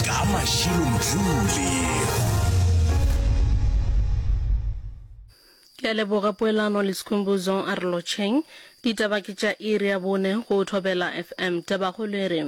ka mašilo mjule ke a leboga poelano le sekhumbuzo a re lotšheng ditaba ke tša iri ya bone go thobela fm tabagolo e re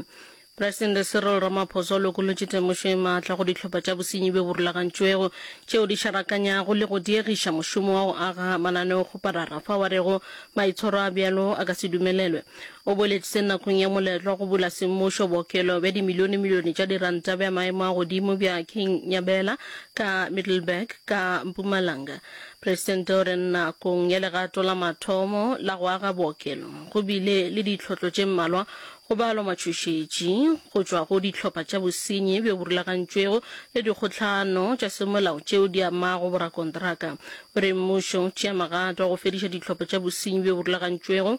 presidente cyril ramaphosa o lokolotše temošo e maatla go dihlopha tša bosenyi bjo bo rulagantšwego tšeo di šarakanyago le go diegiša mošomo wa go aga mananeokgoparara fa wa rego maitshwaro a bjalo a ka se dumelelwe O boletše nakong ya moletlo wa go bula semmušo bookelo bja dimilionemilione tša diranta bja maemo a godimo bja King Nyabela ka Middelburg ka Mpumalanga. Presidente o re nakong ya legato la mathomo la go aga bookelo go bile le ditlhotlo tše mmalwa go balwa matšhošetši go tšwa go dihlopha tša bosenyi bjo bo rulagantšwego le dikgohlano tša semolao tšeo di amago borakontraka. O re mmušo o tšea magato a go fediša dihlopha tša bosenyi bjo bo rulagantšwego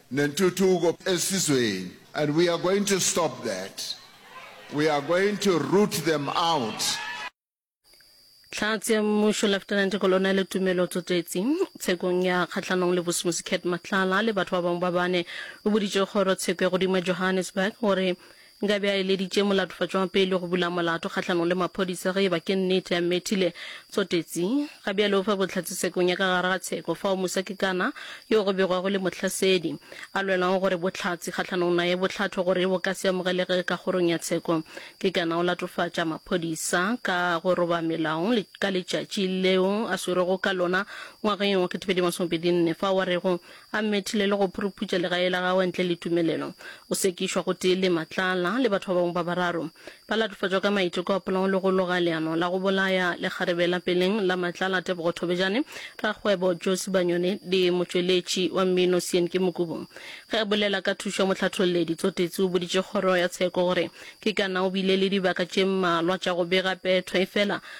Nentuthuko esizweni and we are going to stop that. We are going to root them out. Hlatse ya Mmušo Lieutenant Kolonele Tumelo Tsotetsi tshekong ya kgahlanong le Bosmusi Cat Matlala le batho ba bangwe ba bane o boditše kgoro tsheko ya godimo ya Johannesburg gore Nkabe a eleditše molatofatši wa pele go bula molato kgahlanong le maphodisa ge e ba ke nnete a mmethile. Tsotetsi. Ga bjale o fa bohlatse tshekong ya ka gare ga tsheko fao mosakikana yo go begwago e le mohlasedi a lwelago gore bohlatse kgahlanong naye bo hlathwe gore bo ka se amogelege ka kgorong ya tsheko. Kekana o latofatša maphodisa ka go roba melao le ka letšatši leo a swerwego ka lona ngwageng wa 2024 fao a rego A mmethile le go phuruputša legae la gagwe ntle le tumelelo. O sekišwa gotee le Matlala le batho ba bangwe ba bararo. Ba latofatšwa ka maiteko a polao le go loga leano la go bolaya lekgarebe la peleng la Matlala Tebogo Thobejane, rakgwebo Josi Banyoni le motšweletši wa mmino Sienke Mokubu. Ge a bolela ka thušo ya mohlathololledi, Tsotetsi o boditše kgoro ya tsheko gore ke kana o bile le dibaka tše mmalwa tša go bega petho efela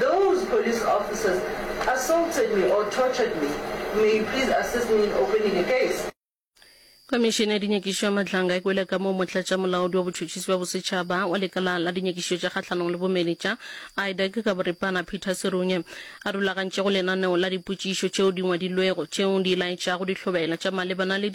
Those police officers assaulted me or tortured me, may you please assist me in opening a case. Khomišene ya Dinyakišišo ya Matlanga e kwele kamoo Motlatšamolaodi wa Botšhotšhisi bja Bosetšhaba wa Lekala la Dinyakišišo tša Kgahlanong le Bomenetša, IDAC, ka boripana Peter Serunye a rulagantšego lenaneo la dipotšišo tšeo di ngwadilwego tšeo di laetšago dihlobela tša malebana le